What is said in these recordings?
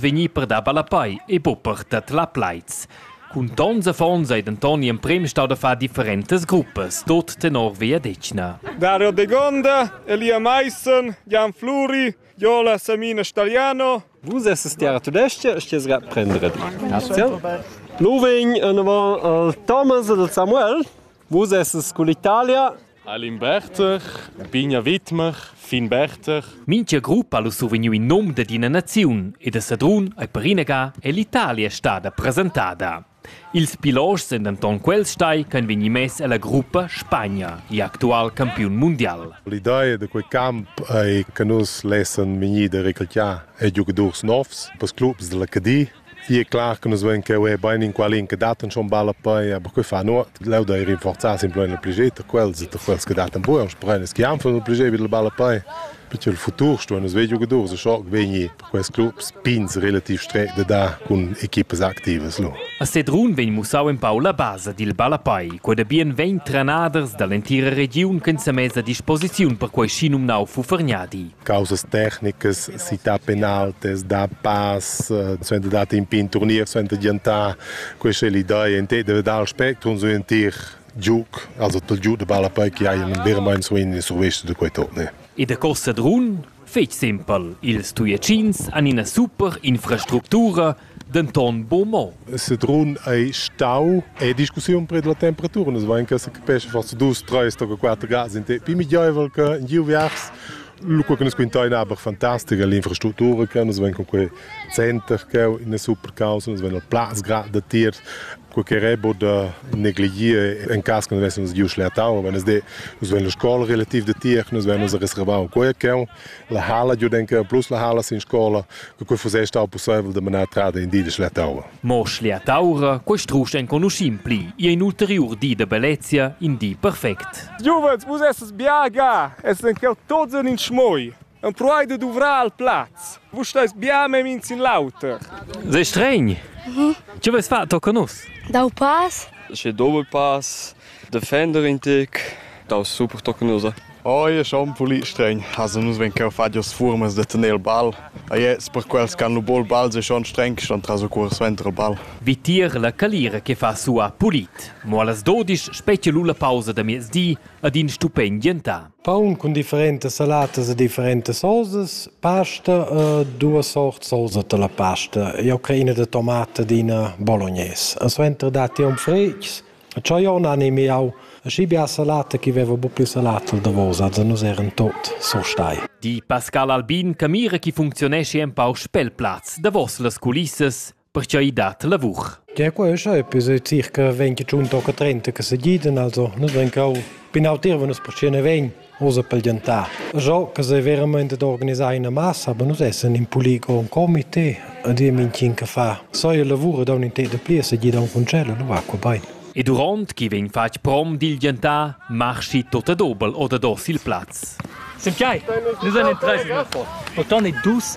vegnì per dar ballapei e bupper dat la plaids. Cun tons affons ei denton gl'emprem stau da far differentas gruppas, tot tenor vegliadetgna. Dario De Gonda, Elia Meissen, Jan Fluri, Jola Samina Stagliano. Vus estes terra tudestga, sties gat prendere. Loving, en avant Thomas ed Samuel. Vus essas cun l'Italia? Alin Berter, Bigna Widmer, Fin Berter. Mincha gruppa ha survegniu in nom dad ina naziun e da Sadrun ei perinaga è l'Italia stada presentada. Ils pilots sind denton quels stai che han vegni mess ella gruppa Spagna, il actual campiun mundial. L'idea da quei camp ei che nus lessan vegnir da recrutar e giugadurs novs per clubs dalla Cadi Sì, è clar che nus vein cheu bein inqual in che dat schon balla pei, aber quei fa nur leu da ir rinforzar simpelmente il plege quels e quels che dat buon sprechen es che han von il plege bil balla pei. Perché il futur sto nus vei giocadors schon vegni per quels clubs pins relativ stret de dar cun equipes activas lu. A Sedrun vegn mussau empau la basa dil ballapei. Quei da bien vegn trenaders dall'entira regiun ch'en semessa a disposiziun per quei schinumnau Fufergnadi. causas tecnicas si ta penaltes da pass suenter dat in pin turnier suenter giantar questa è l'idea in te deve dar spectrum su entir giuc also tol giu de balla poi che hai un vero mein so in survescio de quei torne e da costa drun fetg simpel ils tuiacins han ina super infrastructura denton buc mo. Sedrun ei stau ei discussiun prед la temperatura. Nus vein che secapescha forsa dus, treis toca quater grads in te pli migliaivel che in giu viars. Lu quei che nus quintein aber fantastica l'infrastruttura che nus vein con quei center che ina super causa, nus vein il plaz grad da tiers quei che rebo da negligir en cas che nus vessemos giu schlertau, wenn es de nus wenn la scola relativ de tier, nus vennus a reservau quei che la hala giu denke plus la hala sin scola, che quei fusse stau possibel de manar trada in di de schlertaura. Mo schlertaura, quei strusch enconuschim pli, e in ulteriur di de bellezia, in di perfect. Juventus, vus esses biaga, esses en quel tots in schmoi. Empruai da duvrar al plaz. Vus stais bia memia in sin l'auter. Sei stregn. Mhm. Che vais far tocca nus? Dau pass. Che doppel pass. Defender in tic. Dau super tocca nus. Oh, è schon pulì stregn. Also nus ven cheu fadios furmas de tener il ball. A jetzt per quels can lu bol ball se schon streng schon tras o curs ventre ball. Vitir la calira che fa sua pulit. Mo las 12 specie lu la pausa da miezdi ad in stupend gentà. Paun cun differentas salatas e differentas sosas, pasta e duas sort sosa da la pasta. Jau crei ina da tomata ed ina bolognaise. E suenter datti aunc fritgs. Tscheu jau n'animi jau schi bia salata ch'i veva buc pli salata al davos, also nus eran tot surstai. Di Pascal Albin che mira chi funcziuneschi empau spel plaz davos las culissas Pertgei dat lavur? Ja, qua è schai, per decir che vegn che giun tocca 30 che se giden, also nus vegn cau pinau tir, wenn uns percene vegn osa pel gentar. Jo, che se veramente d'organisar una massa, aber nus essen in polico un comité, a dir minchin che fa. So il lavoro da un inter de pli se gida un concello, nu va qua bein. E durant chi vegn fatg prom dil gentar, marschi tot a dobel oder dos il plaz. Sem chai, nus an interesse. Otan e dus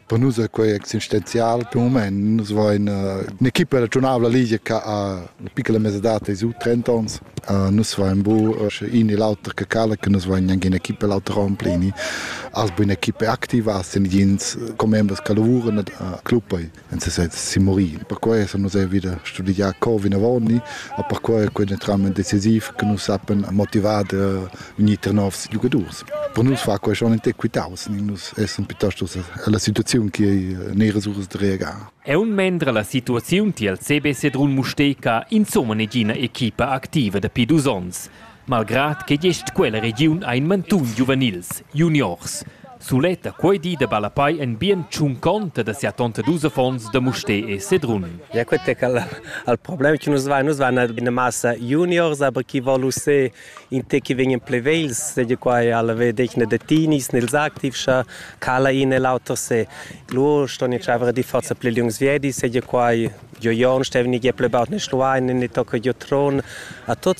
Per nus è quei existenzial per mument. Nus vein un'equipa regiunabla ligia che ha una piccola mesadad dei su 30 onns. nus vein bu in e l'auter che cala, che nus vein anche un'equipa l'auter ramplini. Als bu un'equipa activa, als sind jens commembers che lavuran a club en sesez si morì. Per questo nus è wieder studiar co vinavoni, a per questo è quindi tramite decisiv che nus sappiamo motivare unir novs giocators. Per nus fa quei schon equitaus, nus essan piuttosto alla situaziun che ei neras uras da reagar. Aun mendra la situaziun tiel CB Sedrun Mustega insomma negina equipa activa dapi dus onns, malgrad che gest quella regiun ha in mantun giuvenils, juniors. Suletta quei di da Balapai en bien tschunconta da sia tonta dus affons da Mustè e Sedrun. Ja, quet è al, al problem che nus vai, nus vai ina massa juniors, aber chi volu se in te che vegnan plevels seigi quai alla vedegna da tinis nels activs scha cala in e l'auter se lur ston in chavra di forza ple liungs viedi seigi quai jo jon stevni ge ple baut ne schluain ne tocca jo tron a tots